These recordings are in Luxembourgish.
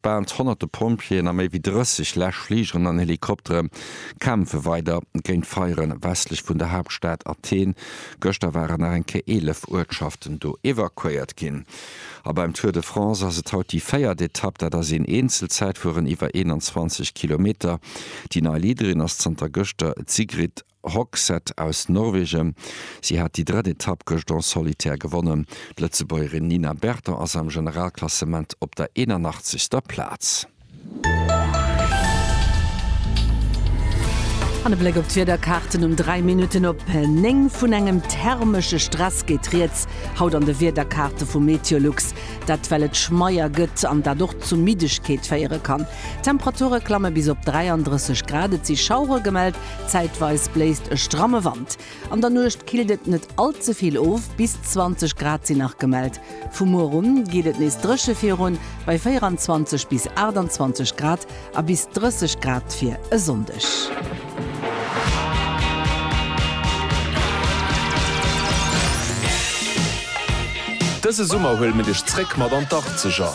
Bal honnerte Pompjeeën a méi wéi 30 Läschfligeren an Helikoptere kämpfe weider géint d'Feiere westlech vun der Haaptstad Athen. Gëschter waren nach eng Kéier 11 Uertschaften do evakuéiert ginn. A beim Tour de France ass et haut déi véiert Etapp. Dat ass een Eenzelzäitfueren iwwer 21 Kilometer. Déi nei Leaderin ass zanter gëschter d'Sigrid Roxette aus Norwegen. Si hat déi drëtt Etapp gëscht en solitaire gewonnen. D'Lëtzebuergerin Nina Berton ass am Generalklassement op der 81. Plaz. An e Bléck op d'Wiederkaarten um 3 Minutten op 9. Vun engem thermesche Stress geet rieds haut an de Wiederkaarte vu Meteolux. Dat well et schmeier gëtt an dat och zu Middegkeet féiere kann. D'Temperature klamme bis op 33 Grad. Et si Schauere gemellt. Zäitweis bléist e stramme Wand. An der Nuecht killt et net all ze vill of, bis 20 Grad sinn nach gemellt. Vu muer un geet et nees dréche virun, bei 24 bis 28 Grad a bis 30 Grad fir e Sonndeg. Dëse Summer huele mir dech zréck mat an d'Achtzeger!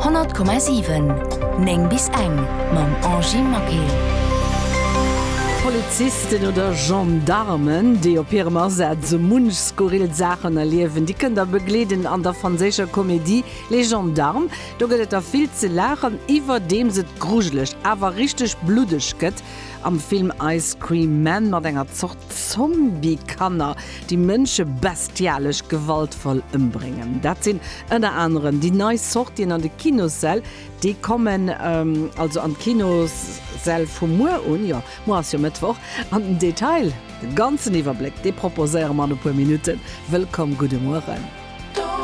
100,7 9 bis eng mam Angy Maquet. Polizisten oder Gendarmen, déi op hirem Asaz sou munch skurril Saachen erliewen, déi kënnt der begleeden an der franséischer Komedie Les Gendarmes. Do gëtt et der vill ze laachen, iwwerdeems et grujeleg, awer richteg bluddeg gëtt am Film Ice Cream Man mat enger Zort Zombie-Kanner, déi Mënsche bestialesch gewaltvoll ëmbréngen. Dat sinn ënner anerem déi nei Sortien an de Kinossäll. Déi kommen also an d'Kinossäll vu muer un, jo, muer ass jo Mëttwoch. An den Detail, de ganzen Iwwerbléck, dee proposéiere mer an e puer Minutten. Wëllkomm, gudde Mueren.